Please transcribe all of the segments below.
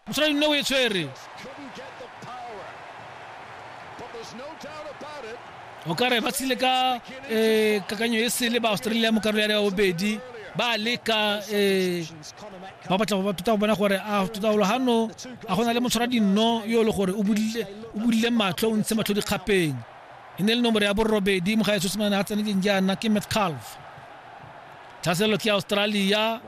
motlhale nne o e tshwere o ka re ba tshile ka um kakanyo e sele ba australia mo karolo ya ya bobedi ba leka um ba batla go tota go bona gore a totagolo gano a go na le motshwara dinno yo e le gore o bodile matlho o ntshe matlho dikgapeng e ne le nomoro ya borobedi mo ga e sosemane a tseneleng jaana ke metcalf tlhaselelo ke australia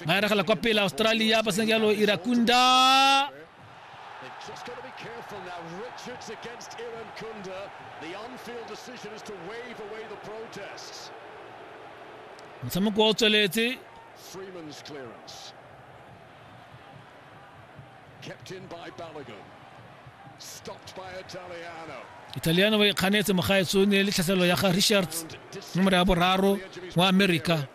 Maera gala kwa pele Australia ba seng jalo Irakunda Just got to be careful now. Richards against Iran Kunda. The on-field decision is to wave away the protests. motshameko o tsweletse Freeman's clearance. italiano ba ikganetse mogaetso o ne le tlhaselelo ya ga richards nomoro ya boraro wa america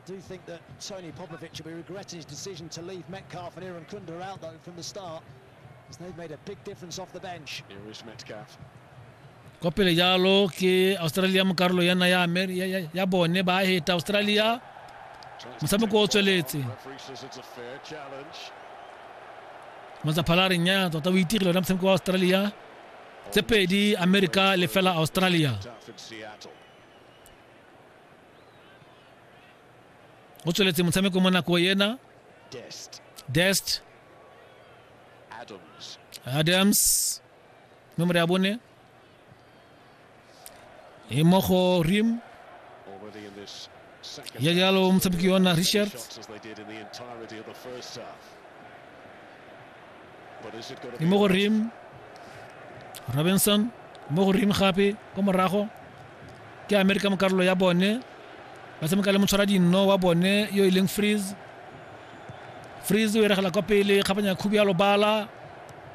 I do think that Tony Popovic will be regretting his decision to leave Metcalf and Aaron Kunda out, though, from the start, as they've made a big difference off the bench. Here is Metcalf. kwa pele jalo ke australia mo karolo ya naya Amer- ya- ya- ya bone ba heta australia motshameko o tsweletse Referee says it's a fair challenge. matsaphalareng ya tota o itigile ona motshameko wa australia tse pedi america le fela australia Tough in Seattle. o tsweletse motshameko mo nako ena Dest. dest Adams. adams nomoro ya bone e mo go rim ya jalo motshameki yona richard e mo go rim robinson mo go rim gape ko morago ke amerika mo karolo ya bone ba tshameka le motshwara dinno wa bone yo e leng freeze freeze o eregela kwa pele kgapanya khubi ya lobala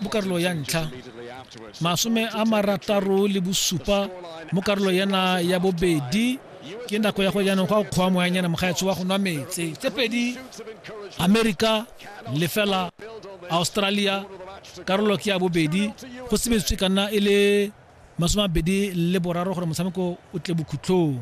mo karolo ya ntlha masome a marataro le bosupa mo karolo yana ya bobedi ke nako ya go jaanong go a kgoa moyanyana mogaetsho wa go nwa metse tse pedi america lefela australia karolo ke ya bobedi go sebeditswe ka nna e le masome mabedi le boraro gore motshameko o tle bokhutlhong